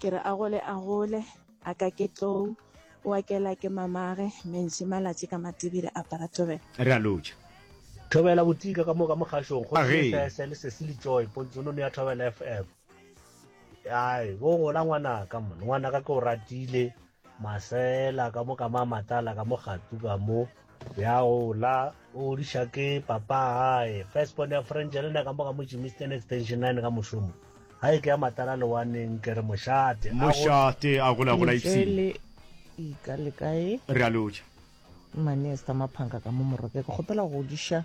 ke re a gole a gole a ka ke tlou wa kela ke mamage mentši malatši ka matibile a paratobela re a lotšha Thobela botika ka mo ka mogašong go Age. sese le sesi le joy pontsonono ya thobela fm ai bo gola ngwanaka mone ngwanaka ke o ratile Masela ka mo ka ma matala ka mo gatu ka mo. Ya ola o diša ke papa hae. First born ya French le nna ka mo ka mo Jimisten Extension 9 ka mošomo. Ha e ke ya matala le waneng ke re mošate. Mošate a gola gola ipsing. Ntswele ika le kae? Re a lotša. Mane Esther Maphanga ka mo Moroke ke kgopela go diša.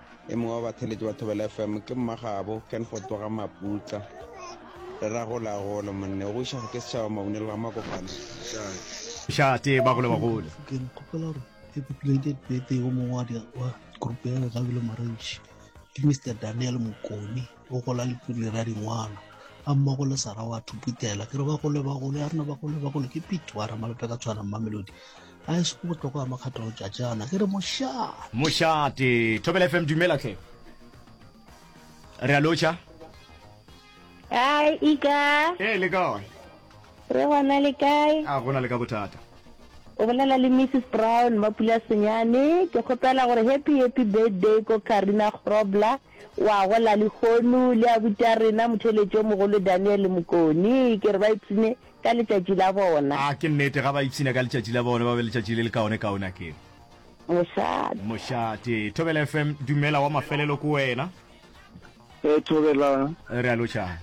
e mongwe wa batheletši ba thobela fm ke mmagabo ken fotoga maputla re ra gola golo monne go iša ke setšhaba mabunelo ga makopana šate ba gole bagole ke nkgopela gore e populated bete yo mongwe wa grupe ya gabile maranši ke mr daniel mokone o gola le pulere ya dingwalo a mmogo le sara wa thuputela ke re ba gole ba gole a rena ba gole ba gole ke pito wa ramalope ka tshwana mmamelodi a e seko botloko ya makgatho go tšatšana ke re mošate mošate thobela fm dumela tlhe re a lotšha ai ika ee le kae re gona le kae a gona le ka bothata o bolela le mrs brown mapula senyane ke kgopela gore happy happy birthday ko karina grobler O a gola lehono le abuti a rena motheeletši yo mogolo Daniel Mokoni. Ke re ba ipshine ka letšatši la bona. A ke nnete, ga ba ipshine ka letšatši la bona, ba be letšatši le lekaonekaone a ke re? Mošate. Mošate. Thobela FM, dumela wa mafelelo ko wena. Ee, Thobelang. Re a lotšhana.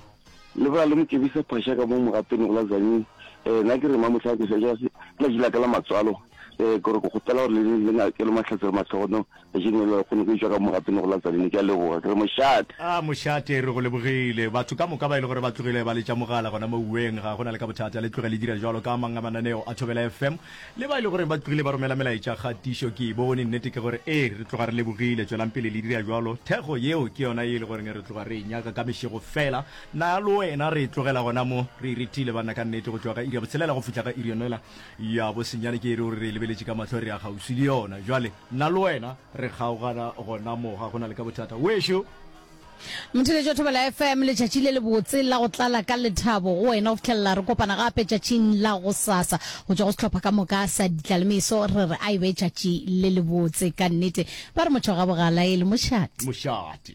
Le bola le Mokebisa Phasha ka mo Mogapeni go la Tzaneen. Ee, nna ke re mma mohla ke sa ja ke letšatši la ka la matswalo. Ee, ke gore ke kgopela gore le le ngakele mahlatse le mahlogono. Kajeno le lekgono ke tšwa ka mogatong go la Tzaneen. Ke a leboga. Ke re, Mošate! A, Mošate, re go lebogile. Batho ka moka ba e le gore ba tlogile ba letša mogala gona mo uweng, ga go na le ka bothata. Le tloge le dira bjalo ka a mang a mananeo a Thobela FM. Le ba e le gore ba tlogile ba romela melaetša ga tiišo ke e bone. Nnete ke gore, ee, re tloga re lebogile. Tšwelang pele le dira bjalo. Thekgo yeo ke yona ye e le goreng re tloga re e nyaka ka mešego feela. Na le wena re e tlogela gona mo? Re e rethile, banna, ka nnete, go tšwa ka iri ya botshelela go fihla ka iri yona yela ya bosenyane. Ke e re o re re e lebeletše ka mahlo, re ya kgauswi le yona. Bjale. Nna le wena re kgaogana gona mo ga go na le ka bothata. Wešo! Motheletši wa Thobela FM, letšatši le lebotse la go tlala ka lethabo go wena go fihlelela re kopana gape tšatšing la gosasa. Go tšwa go sehlopha ka moka sa Ditla le Meso re re a e be tšatši le lebotse. Ka nnete ba re motho ga bogala e le mošate. Mošate.